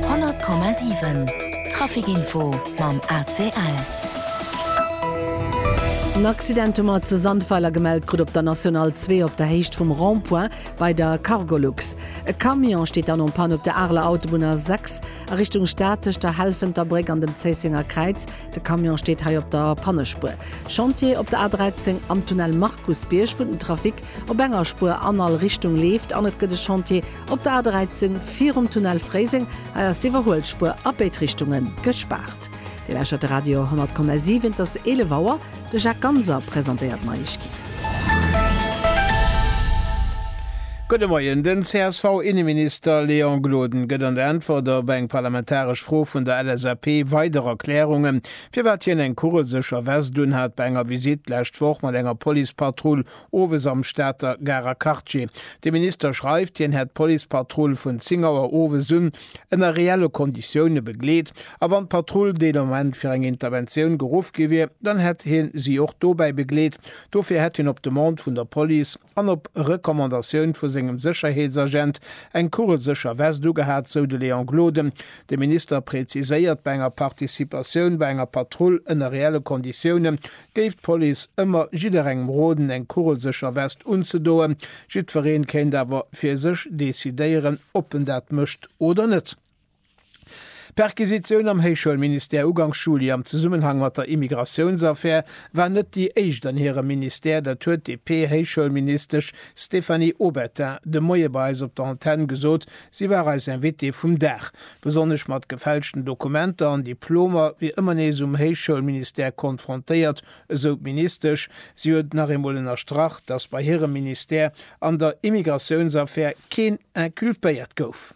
100,7 Trafic Info mam ACL. En Accident hu mer zu Sandweiler gemellt krut op der National 2 op der Héicht vum Rond-point bei der Cargolux. E Camion steet dann en panne op der Areler Autobunn A 6 a Richtung Stad tëscht der Helfenter Bréck an dem Zéissenger Kräiz. De Camion steet hei op der Pannespuer. Chantier op der A 13 am Tunnel Markusbierg, wou den Trafic op enger Spuer an all Richtung leeft an et gëtt e Chantier Op der A13 virum Tunnel Fréiseng, hei ass d'Iwwerhuelspuer a béid Richtunge gespaart. Dir lauschtert de Radio 10,7, et ass 11 Auer. De Jacques Ganser presentéiert d'Neiegkeeten. Gudde Moien. Den CSV-Inneminister Léon Gloden gëtt an der Äntwert op eng parlamentaresch Fro vun der LSAP weider Erklärungen, firwat hien eng kugelsécher West unhat bei enger Visitt d'lescht Woch mat enger Policepatrull Owes am Stater Garer Quartier. De Minister schreift, hien hätt d'Policepatrull vun 10 Auer owes un ënner reelle Konditioune begleet a wann d'Patrull dee Moment fir eng Interventioun geruff gi wier, dann hätt hie si och dobäi begleet. Dofir hätt hien op Demande vun der Police an op Recommandatioun vu sengem Sécherheetsagent eng kugelsécher Vest ugehat, sou de Léon Gloden. De Minister preziséiert, bei enger Participatioun bei enger Patrull ënner reelle Konditioune géif d'Police ëmmer jidderengem roden eng kugelsécher West unzedoen, jiddwereen kéint awer fir sech decidéieren, ob en dat mécht oder net. D'Perquisitioun am Héichschoulministère ugangs Juli am Zesummenhang mat der Immigratiounsaffär war net déi éischt an hirem Ministère, dat huet d'DP-Héichschoulministesch Stéphanie Obertin de Moie bei eis op der Antenne gesot, Si war eis Invitée vum Dag. Besonnesch mat gefälschten Dokumenter an Diplomer wier ëmmer nees um Héichschoulministère konfrontéiert, esou d'Ministesch. Si huet nach eemol ënnerstrach, datt bei hirem Ministère an der Immigratiounsaffär keen inculpéiert gouf.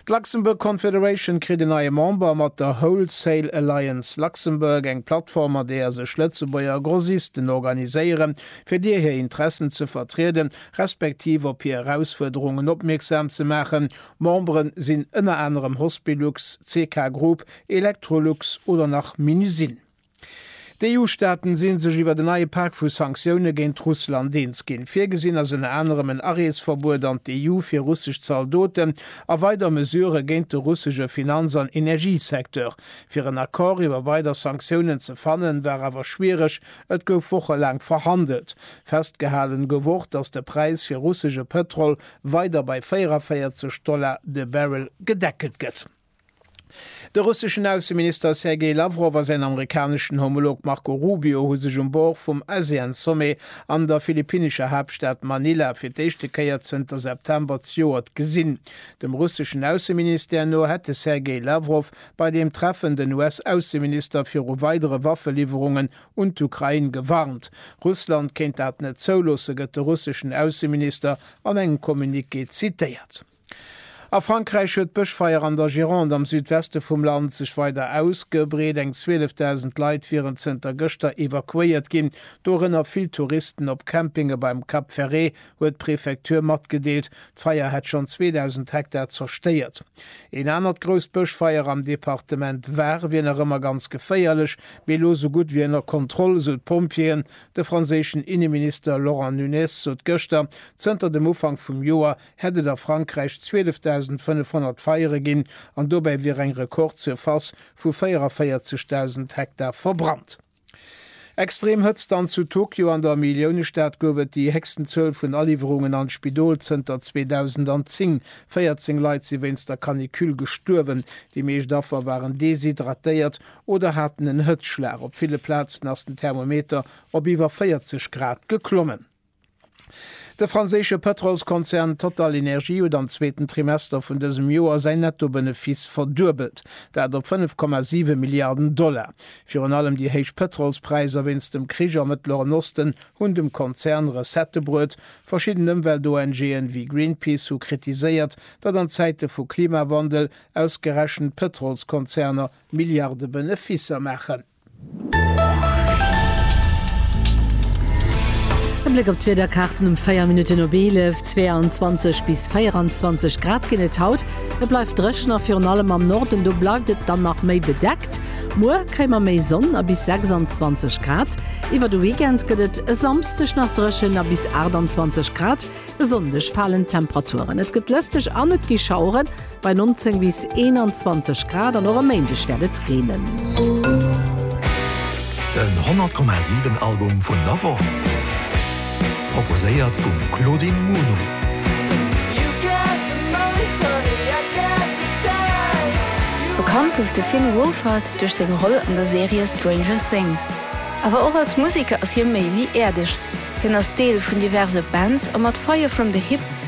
D'Luxembourg Confederation kritt en neie Member mat der Wholesale Alliance Luxembourg, eng Plattform, an deeër sech Lëtzebuerger Grossisten organiséieren, fir deer hir Interessen ze vertrieden, respektiv op hir Erausfuerderungen opmierksam ze maachen. Memberen sinn ënner anerem Hospilux, CK Group, Electrolux oder nach Minusine. D'EU-Staaten si sech iwwer en neie Pak vu Sanktioune géint Russland eens ginn. Virgesinn ass ënner anerem en Areesverbuet an d'EU fir russesch Zaldoten a weider Mesurë géint de russesche Finanz an Energiesecteur. Fir en Accord iwwer weider Sanktiounen ze fannen, war awer schwiereg, Et gouf wochelaang verhandelt. Festgehalen gouf och, datt de Präis fir russesche Pëtrol weider bei 44 Dollar de Barrel gedeckelt gëtt. De russeschen Ausseminister Sergei Lawrow a säin amerikaneschen Homolog Marco Rubio hu sech um Bord vum ASEAN-Sommet an der philippinescher Haaptstad Manila fir d'éischte Kéier zënter September zejoert gesinn. Dem russeschen Ausseministère no hätt de Sergei Lawrow bei deem Treffen den US-Ausseminister viru weidere Waffeliwwerungen un d'Ukrain gewarnt. Russland kéint dat net zouloossen, gëtt de russeschen Ausseminister an engem Communiqué zitéiert. A Frankräich huet d'Bëschfeier an der Gironde am Südweste vum Land sech weider ausgebreet. Eng 12.000 Leit wieren zënter gëschter evakuéiert ginn, dorënner vill Touristen op Campinge beim Cap Ferret, huet d'Prefektur matgedeelt. D'Feier hätt schonn 2.000 Hektar zerstéiert. Een anert grousst Bëschfeier am Departement Var wier nach ëmmer ganz geféierlech, mee elo sou gutt wéi ënner Kontroll, sou d'Pompjeeën. De franséischen Inneminister Laurent Nunez sot gëschter, zënter dem Ufank vum Joer hätt et a Frankräich 12.500 Feiere ginn an dobäi wier eng Rekordsurface vu 44.000 Hektar verbrannt. Extrem Hëtzt an zu Tokio an der Milliounestad gouf et déi héchsten Zuel vun Aliwwerungen an d'Spidol zënter 2010. 14 Leit si wéinst der Canicule gestuerwen. Déi meescht Affer waren deshydratéiert oder haten en Hëtzschlag. Op ville Plazen ass den Thermometer op iwwer 40 Grad geklommen. De franséische Pëtrolskonzern TotalEnergies huet am zweeten Trimester vun dësem Joer säin Nettobenefiss verduebelt, dat op 5,7 Milliarden Dollar. Virun allem déi héich Pëtrolspräisser wéinst dem Krich am Mëttleren Osten hunn dem Konzern Recettë bruet. Verschidden Ëmwelt-ONGen, wéi Greenpeace, hu kritiséiert, datt an Zäite vu Klimawandel ausgerechent Pëtrolskonzerner Milliarde Benefisser maachen. E Bléck op d'Wiederkaarten um 4 Minutten op 11, 22 bis 24 Grad ginn et haut. Et bleift dréchen a virun allem am Norden do bleift et dann nach méi bedeckt. Muer kréie mer méi Sonn a bis 26 Grad. Iwwer de Weekend gëtt et e Samsdeg nach dréchen a bis 28 Grad. E Sonndeg falen d'Temperaturen, et gëtt lëfteg an et gi Schaueren. Bei 19 bis 21 Grad an och e Méindeg wäert et reenen. Den 100,7 Album vun der Woch, proposéiert vum Claudine Muno. Bekannt gouf de Finn Wolfhard duerch seng Roll an der Serie Stranger Things. Awer och als Museker ass hie méi wéi äerdeg. Hien ass Deel vun diverse Bands a mat Fire From The Hip,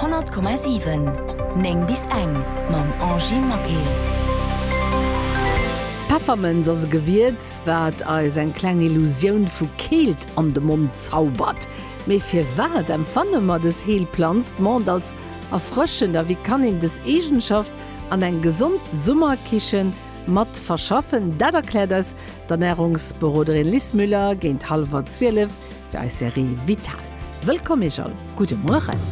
100,7 9 bis eng mam Angie Maquet. Peffermënz ass e Gewierz, wat eis eng kleng Illusioun vu Keelt an de Mond zaubert. Mee firwat empfanne mer dës Heelplanz de Mond als erfrëschend a wéi kann een dës Eegenschaft an eng gesond Summerkichen mat verschaffen? Dat erkläert eis d'Ernärungsberoderin Lis Müller géint hallwer zwielef fir eis Serie Vital. Wëllkomm iech all, gudde Mueren!